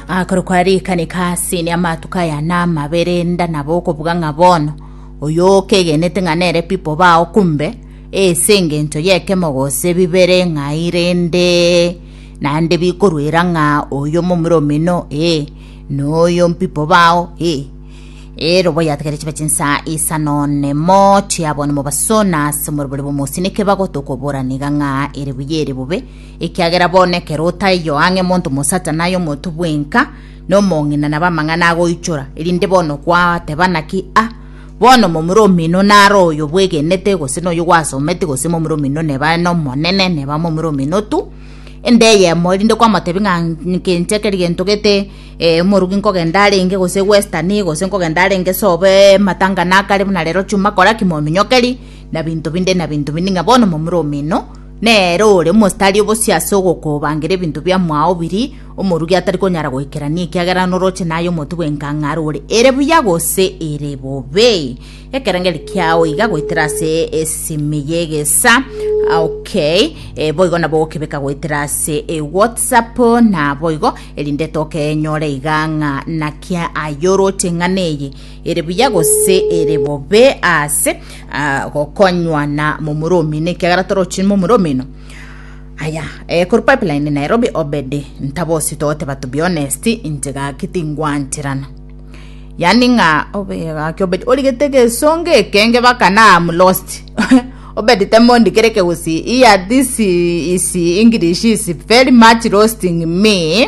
Akorokwa rika nikasi ne amatuko aya namabe renda nabo okobuga ng'a bono oyo okegenete ng'a nere pipo bao kumbe ese engencho yekemo gose bibere ng'ai rende nande bikoruera ng'a oyo momura omino ee noyo mpipo bao ee erobo yategere chiba chinsa isa nonemo chiabonimo basona ase omorobore bomosinike bagotokobora niga ng'a ere buya ere bobe Ekiagera bono ekero otaiyo ang'e monto mosacha naye omotu bwenka, na omong'ina nabo amang'ana agoichora, erinde bono kwateba naki, a bono momura omino naro oyo bwegenete, gose noyo gwasometi, gose momura omino neba nomonene, neba momura omino tu, ende eyemo, erinde kwamotebi ng'a nke inche keri gento gete omorugi nkogenda arenge gose western, gose nkogenda arenge sobe matangana akare buna rero chuma kora ki mominyokerie, na binto binde na binto binde, ng'a bono momura omino. Nere ore mositari obosio ase ogokobangira ebinto biamwao biri, omorugi atari konyara goikerania ekiagera noroche naye omotwe bw'enkang'are ore ere buya gose ere bobe. Ekerengeri kiao iga goetera ase esimi y'egesa. Okay, eh, boigo nabo okebeka goetera ase eh, WhatsApp na boigo erinde tokenyore iga ng'a naki ayoroche eng'ana eye ere buya gose ere bobe ase ah, gokonywa na momura omino ekiagera torochi momura omino aya eh, kuri pipeline nairobi obedi ntabosi togoteba to be honest inche gaki tingwancherana yani ng'a obegaki obedi origete gesonge ekenge baka na am lost obedi temondi kere kegusi iya this is english is very much roasting me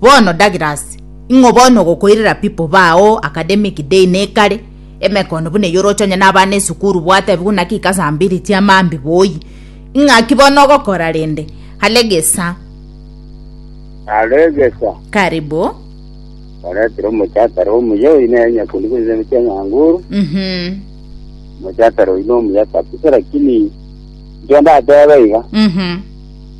Bono Douglas, ing'o bono ogokoirera pipo bao academic day nekare, emekono buna eye oroche onye nabana esukuru bwatebigwa naki ika saa mbiri chiamambi boi. Ing'aki bono ogokora rende? Alegesa. Alegesa. Karibu. Oretire omochatara omuya oyi neye nyakundi buna ene chiang'anguru. Mhm. Omochatara oyi nomuya kabisa lakini ndio ndateba iga. Mhm.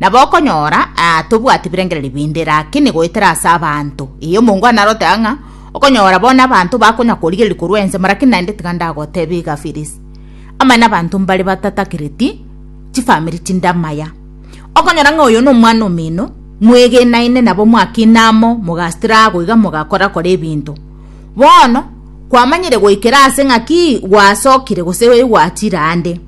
Nabo okonyora aa tobwati birengererio binde, rakini goetera ase abanto. Ee, omonto onde narote aa ng'a okonyora bono abanto bakonya korigereria korwa ensemo, rakini naende tiga ndagotebie iga, Phyllis, amo nabanto mbare batatakereti chifamiri chinde amaya. Okonyora ng'a oyo nomwana omino, mwegenaine nabo mwakina amo, mogasitira aa goiga mogakora kora ebinto. Bono kwamanyire goikera ase ng'a ki gwasokire gose gwachire ande.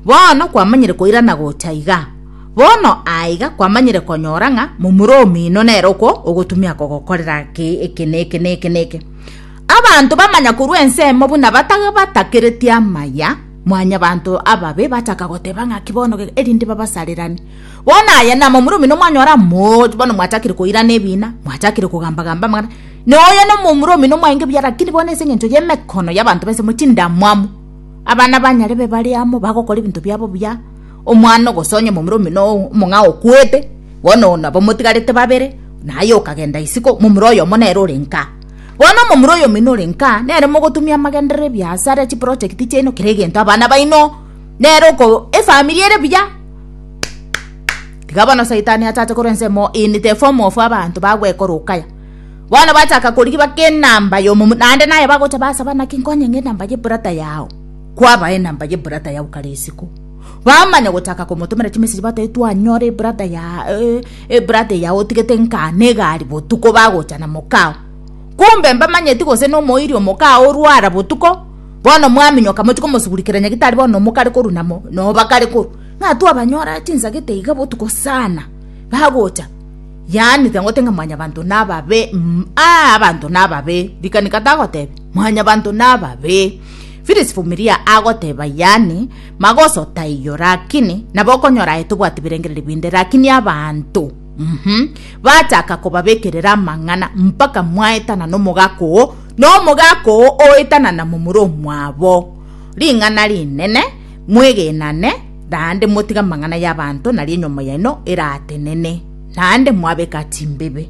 Bono kwamanyire koirana gocha iga. Bono aiga kwamanyire konyora ng'a momura omino nere okwo ogotumia kogokorera ki eke na eke na eke na eke. Abanto bamanya korwa ensemo buna batabatakeretie amaya, mwanyabanto ababe bachaka goteba ng'a ki bono ge- erinde babasarerani. Bono aya na momura omino mwanyora mo bono mwachakire koirana ebina, mwachakire kogamba-gamba amang'ana. Na oyo na momura omino mwaenge buya lakini bono ase eng'encho y'emekono y'abanto b'ensemo chindamwamu, abana banyarebe bare amo bagokora ebinto biabo buya, Omwana oo gose onye omomura omino omong'a okwete, bono nabo motigarete babere, naye okagenda isiko, momura oyomo nere ore nka. Bono omomura oyomino ore nka, nere mogotumia amagenderero, ebiasara, chiproject chiaino, kera egento, abana baino, nere oko efamiri ere buya. Tiga bono saitani achache korwa ensemo in the form of abanto bagwekora okaya. Bono bachaka korigia baka enamba ya omomura, naende naye bagocha basaba naki nkonye ng'a enamba ya ebrother yao, kwabae enamba ya ebrother yao kare isiko. Bamanya gochaka komotomera chimeseji batoe twanyora ebrada ya ebrada ya otigete nka negari botuko bagocha na mokao kumbe mbamanyeti gose na omoiri omokao orwara botuko bono mwaminyoka mochi komosugurikera nyagitari bono nomokare koru na mo nobakare koru ng'a twabanyora chinsagete iga botuko sana bagocha yaani tiga ngote ng'a mwanyabanto nababe mm aa abanto nababe rikanika tagoteba mwanyabanto nababe. Phyllis Vumilia agoteba yaani magoso taiyo lakini nabo okonyora aye tobwati birengererio binde lakini abanto mm -hmm. bachaka kobabekerera amang'ana mpaka mwaetana nomogaka oo nomogaka oo oetana na momura omwabo ring'ana rinene mwegenane naende motiga amang'ana y'abanto nari enyomo yaino eratenene naende mwabeka chimbebe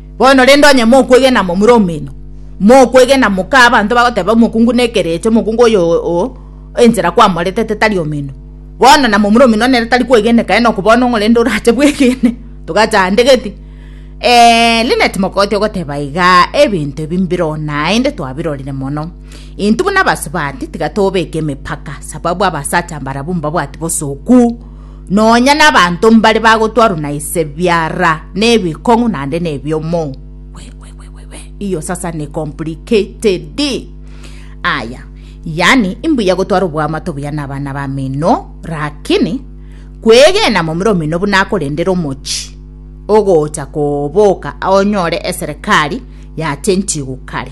Bono rende onye mokwegena momura omino, mokwegena moka abanto bagoteba omokungu na ekerecha, omokungu oyo o enchera kwamoretete tari omino. Bono na momura omino nere tari kwegeneka enoku bono ng'o rende orache bwegene? Togachandegeti. Eeh Linet mogoti ogoteba igaa, ebinto ebi mbiroo naende twabirorire mono. Intwe buna abasubati tiga tobeke emepaka sababu abasacha mbarabwo mbabwati bosoku. Nonya nabanto mbare bagotwarwa na ise biara nebikong'u naende nebiomo. Wewewewe, iyo sasa ne complicated. Aya, yani imbuya gotwara obwamato buya nabana bamino, rakini kwegena momura omino buna akorendera omochi ogocha koboka onyore eserekari yachenchigu kare.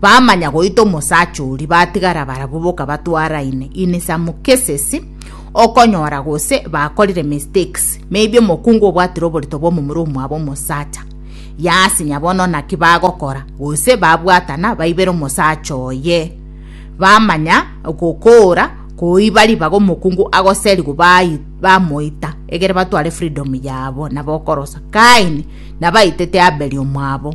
Bamanya goita omosacha oria, batigara barabwo boka batwaraine in some cases okonyora gose bakorire mistakes maybe omokungu obwatire oborito bw'omomura omwabo omosacha yasinya bono naki bagokora gose babwatana baibera omosacha oye bamanya gokora koiba ribaga omokungu agoserigo bai- bamoita egere batware freedom yabo nabo okorosa kaini nabaitete aberi omwabo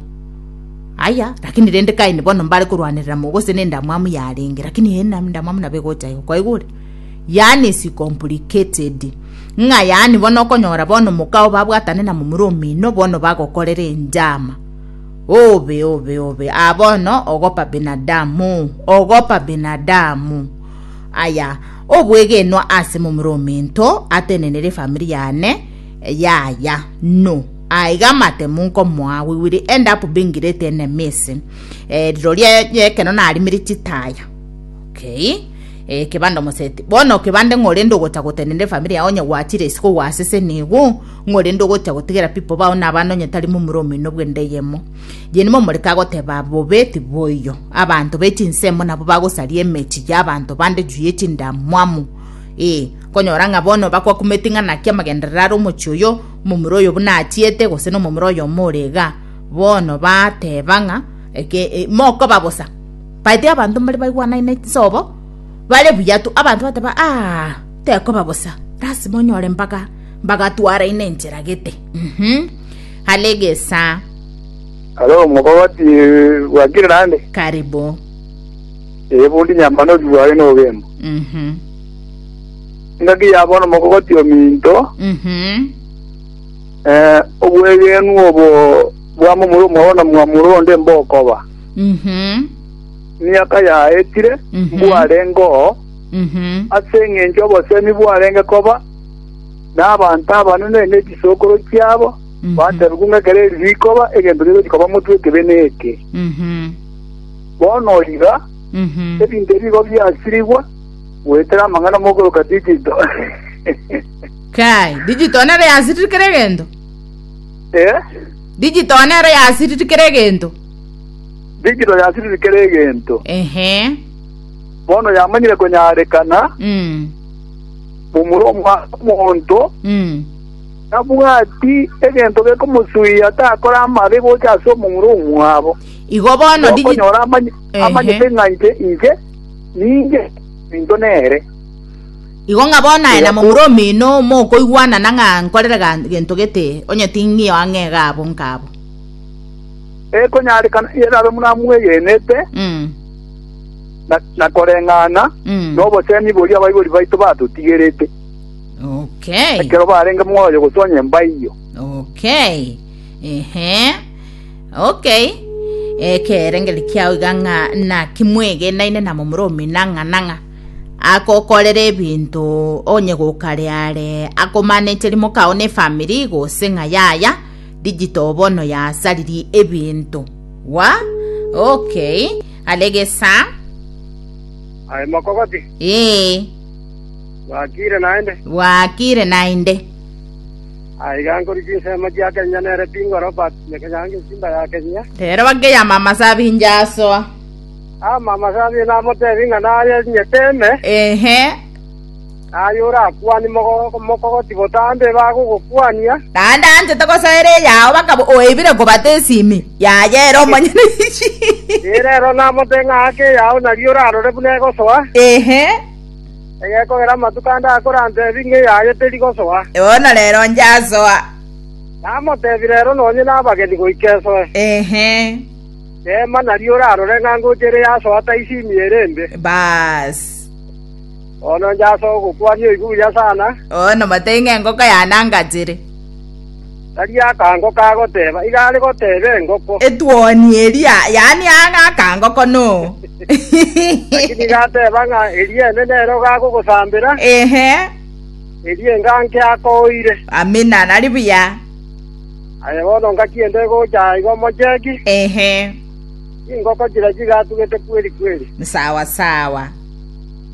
Aye, lakini rende kaeni bono mbare korwanerera mo gose nendamwamu yarenge, lakini eye nendamwamu nabo egocha igo. Kwaigure? Yaani is complicated. Ng'a yaani bono okonyora bono moka oo babwatane na momura omino bono bagokorera enjama. Obe obe obe aa bono ogopa binadamu, ogopa binadamu. Aya, obwegenwa ase momura omento atenenere efamiri yane, Yaya, nu, aiga amatemu nkomoa we will end up being great enemies eh, riroria ekero narimire chitaya okay eh, kebande omoseti bono kebande ng'orende ogocha gotenende famiri yao onye gwachire isiko gwasese nigo ng'orende ogocha gotigera pipo bao na abana onye tari mumura omino bwende eyemo yeni momoreka agoteba bobe tiboiyo abanto bechinsemo nabo bagosaria emechi ya abanto bande juu yechindamwamu eh, Konyora ng'a bono bakwakumeti ng'a naki amagenderero are omochie oyo, omomura oyo buna achiete, gose nomomura oyomo ore iga. Bono bateba ng'a, Eke, e, mokoba bosa. Baete abanto mbare baigwanaine chisobo, bare buya tu. Abanto bateba, Aa, tekoba bosa. Lasima onyore mbaga, mbaga twaraine enchera gete. Mhm. Are egesaa. Alo omobabati bwakire naende. Karibu. Ee, bondi nyamana obi bwaye nogembo. Mhm. engaki yabo nomogogoti ominto, Mhm. eh, obwegenwa obo bwamomura omwabo na mwamura onde mbokoba. Mhm. Emiaka yaetire Mhm. mbwarengeo Mhm. ase eng'encho obosemi bwarenge koba n'abanto abanene n'echisokoro chiabo Mhm. batebigwa ng'a ekero eri rikoba egento rigochi koba motwe ekebe neke Mhm. bono iga Mhm. ebinto ebigo biasirigwa Goetera amang'ana mokoroka digito. Kai, digital nero yasirir kera egento? Eh? Digital nero yasirir kera egento? Digito yasirir kera egento. Ehe. Bono yamanyire konyarekana Mm. momura omwana omonto Mm. nabwati egento gekomosuia takora amabe gocha ase omomura omwabo. Igo bono digi- Okonyora amanye Ehe. amanyete ng'a inche inche Ninche ninto nere. Igo ng'a bono aye na momura omino mokoigwanana ng'a nkorere gento gete, onye ting'io ang'e iga abo nkabo. Ekonyarekana erabe buna mwegenete, na koreng'ana nobosemi boria abaibori baito batotigerete, ekero barenge moyo gose onye mbaiyo. Ehe. Okay. Ekerengeri kiao iga ng'a naki mwegenaine na momura omina ng'a na ng'a akokorera ebinto onye gokare are akomanecheri mokao ne family gose ng'a yaya digital bono yasariri ebinto wa okay aregesa Aye mokogoti. ee Bakire naende. bwakire naende Aiga nkoria chinsemo chia Kenya nere Bingo Robert Nyakenya Ngesimba ya Kenya. Rero bakeyama amasabi inche asoa. Ama amasabi namotebi ng'a naye nyete ime, Ehe, naye orakwani mogo- mokogoti botambe bagogokwania. naende anchete gosaera eyao bakaba oebire kobata esimi yaye ere omonyene. Ee, rero namote ng'a ake eyao naria orarore buna egosoa. Ehe, egekogera amatuko ande akore antebi ng'a eyaye teri gosoa. Bono rero inche asoa. Namotebi rero nonye nabageni goika esoe. Teema nario orarore ng'a ngocha ere yasoa taisimi ere embe. Bono inche asoa ogokwania oigwe oria sana. Bono motebi ng'a engoko yane angachere. Tari akango ka goteba, iga are goteba engoko. Etuoni eria, yaani ang'e akango kono. Lakini iga ateba ng'a eria enene ero gagogosambera, Ehe, eria enga nke akoire. amina, nari buya. Aye bono ngaki ende egocha igo mocheki, Ehe, chingoko chiria chigatugete kweri kweri. sawa sawa.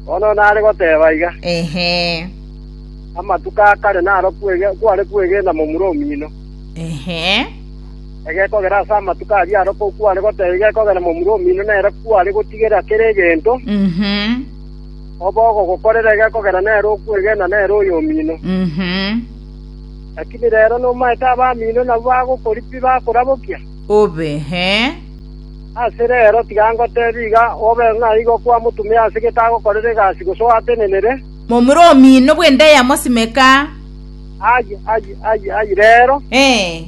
Bono nare goteba iga. Ehe. Amatuko a kare naro kware kwegena momura omino. Egekogera ase amatuko aria arokwo kware goteba igekogera momura omino nere kware gotigerera kera egento, obe ogogokorera egekogera nere okwegena nere oyomino. Lakini rero nomaete abamino nabwo bagokoripa pi bakorabokia? Obe. Ase rero tiga ngotebie iga, obe ng'a igo kwamotumire ase getagokorera egasi gose oatenenere, Momura omino bw'ende ya mosimeka. Aye, aye, aye, aye, rero, Ee.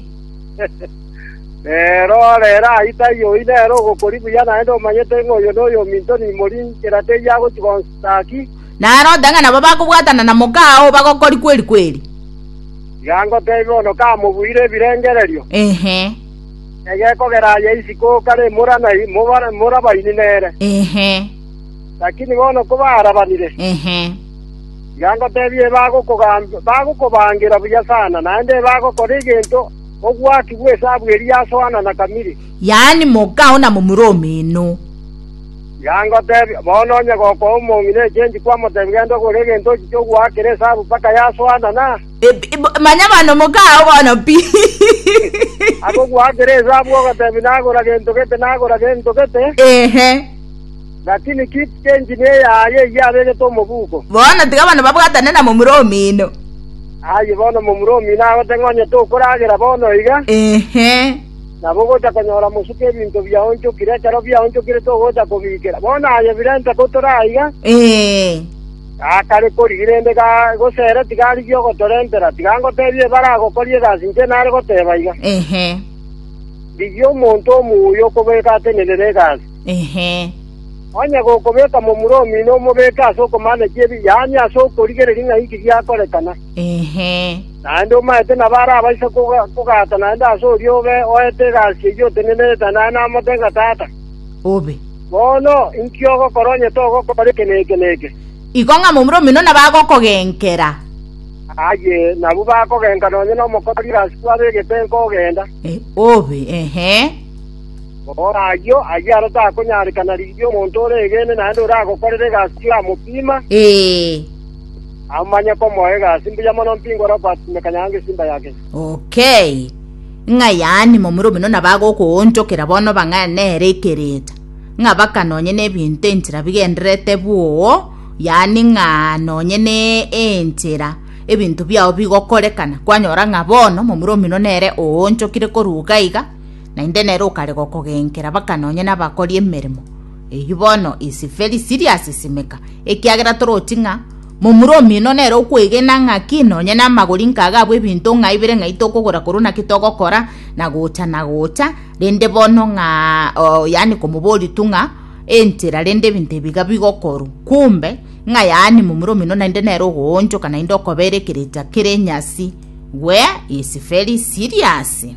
rero, rero, aye taiyo oyio nere ogokori buya, naende omanyete ng'a oyo noyo ominto nimori nchera teiyo agochia gonsuta ki. Naroote ng'a nabo bakobwatana na moka oo bagokori kweri kweri. Tiga ngoteebie bono kamobuire ebirengererio, Ehe, egekogera aye isiko kare mora na mora morabaini nere. ehe. Lakini bono kobaarabanire, tiga ngoteebie ebagokogambia, bagokobaangira buya sana, naende ebagokora egento ogwakigwa esabu eria ya Soana na Kamiri. Yaani mokao na momura omino. Tiga ngoteebie, bono onye gokoa omong'ina echenji kwamoteebia genda ogore egento ochiche ogwaakera esabu mpaka ya Soana na Eb- eb- manya bono mokao bono pi agogwaakera esabu ogoteebia nagora gento gete, nagora gento gete, ehe Lakini keep the engineer yaye eyio abegete omobuko. Bono tiga abana babwatane na momura omino. Aye bono momura omino agote ng'a onye tokoragera bono iga, Ehe. nabo ogocha konyora mosuke ebinto biaonchokire, ekero biaonchokire togocha kobiikera. Bono aye birente ko tore aiga, Ee. gakare korigia rende ga- gose ere tiga arigie ogotorentera. Tiga ngotebie ebare agokoria egasi inche nare goteba iga, Ehe. rigia omonto omuya okobeka atenerere egasi. Inche. Onye gokobeka momura omino omobeke ase okomanekia ebibe, yaani ase okorigereria ng'a inki giakorekana. Inche. Naende omaete nabo arabaise kogata naende ase oria obe oete egasi eyio otenenerete naye namote ng'a Tata, obe. Bono, inki ogokora onye togokora eke na eke na eke? Iko ng'a momura omino nabo agokogenkera. Aye, nabwo bakogenka nonye nomokori egasi kwabegete nkogenda. Obe. Inche. Gokora ayio, ayio aro takonyarekana rigiya omonto ore egeene naende oragokorera egasi y'amopima, amanye komoa egasi mbuya mono mpingwa Robert Mekanyanga Ngesimba ya Kenya. Okay. Ng'a yaani momura omino nabagokoonchokera bono bang'ae nere ekereta. Ng'a baka nonye nebinto enchera bigendererete bwoo, yaani ng'a nonye ne enchera ebinto biao bigokorekana, kwanyora ng'a bono momura omino nere oonchokire koruga iga, Naende nere okarega okogenkera mpaka nonye nabakori emeremo. Eyio bono ise Felisiri asisimeka, ekiagera toroti ng'a momura omino nere okwegena ng'aki nonye namagori nkagabwa ebinto ng'a ibere ng'ai tokogora korwa naki togokora na gocha na gocha rende bono ng'a oh, yani komobori tu ng'a entera rende ebinto ebiga bigokorwa kumbe ng'a yani momura omino naende nere ogoonchoka naende okobera ekerecha kere nyasi gwe ise Felisiriasi